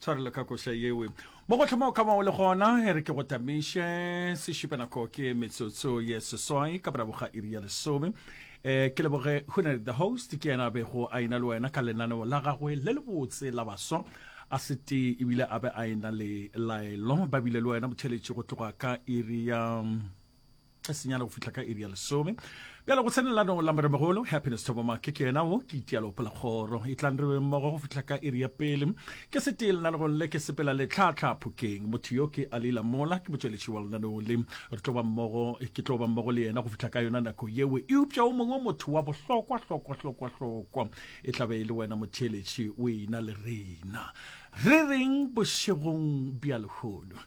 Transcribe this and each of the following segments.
tshwarelo ka koša yewe mo go hloma o ka ba o le gona e re ke go tamiše sešupe nako ke metsotso ye seswai ka morago ga iri ya lesome um ke leboge hunary the host ke yena a bego a ena le wena ka lenaneo la gagwe le lebotse la baswa a se tee ebile a be a ena le laelo ba bile le wena motheletši go tloga ka iri ya a senyana go fihla ka iri ya lesome bjale go tsenelano la moremogolo happiness thobomake ke yena o ke itialo polakgoro e tlang re mmogo go fihla ka iri ya pele ke setee lenanegong le ke sepela letlhatlha phokeng motho yo ke a leila mola ke motšweletši wa lenaneo le re tlo ba mmogo ke tlo ba mmogo le yena go fihla ka yona nako yeo eupša o mongwe motho wa bohlokwa hlokwa hlokwa hlokwa e tlabe e le wena motšheletši o ena le rena re reng bošegong bja lehono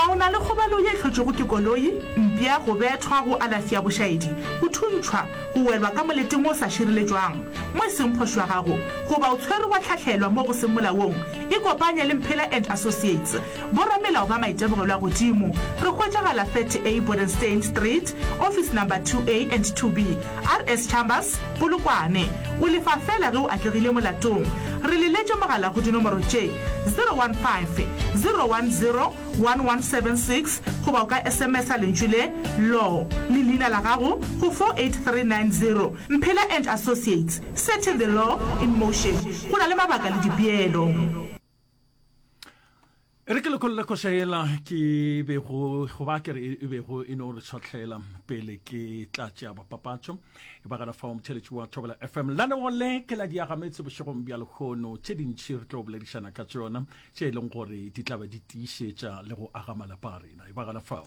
A o na le kgobalo ye e hlotšwego ke koloi, mpša, go bethwa, go alafi ya bošaedi, go thuntšhwa, go welwa ka moleting o sa šireletšwang mo e seng phošo ya gago, goba o tshwerwe wa hlahlelwa mo go seng molaong? Ikopanye le Mphela and Associates, boramelao ba maitemogelo a godimo. Re hwetšagala 30A Bodenstein Street, office number 2A and 2B, RS Chambers, Polokwane, O lefa feela ge o atlegile molatong. Re leletše mogala go dinomoro tše, 015 010 1176 goba o ka SMS-a lentšu le, Law, le leina la gago go 48390. Mphela and Associates, Setting the Law in Motion, Go na le mabaka le dipeelo. e re ke lekholela koša ela ke bego go ba kere e bego e no re tshwatlhela pele ke tla tšea bapapatšo e ba gana fao motšheletši wa thobela fm la lego le ke la diagametse bošegong bja lekgono tše dintšhi re tlo boledišana ka tsona tše e leng gore di tlabe di tiišetša le go aga malapa a rena e ba gana fao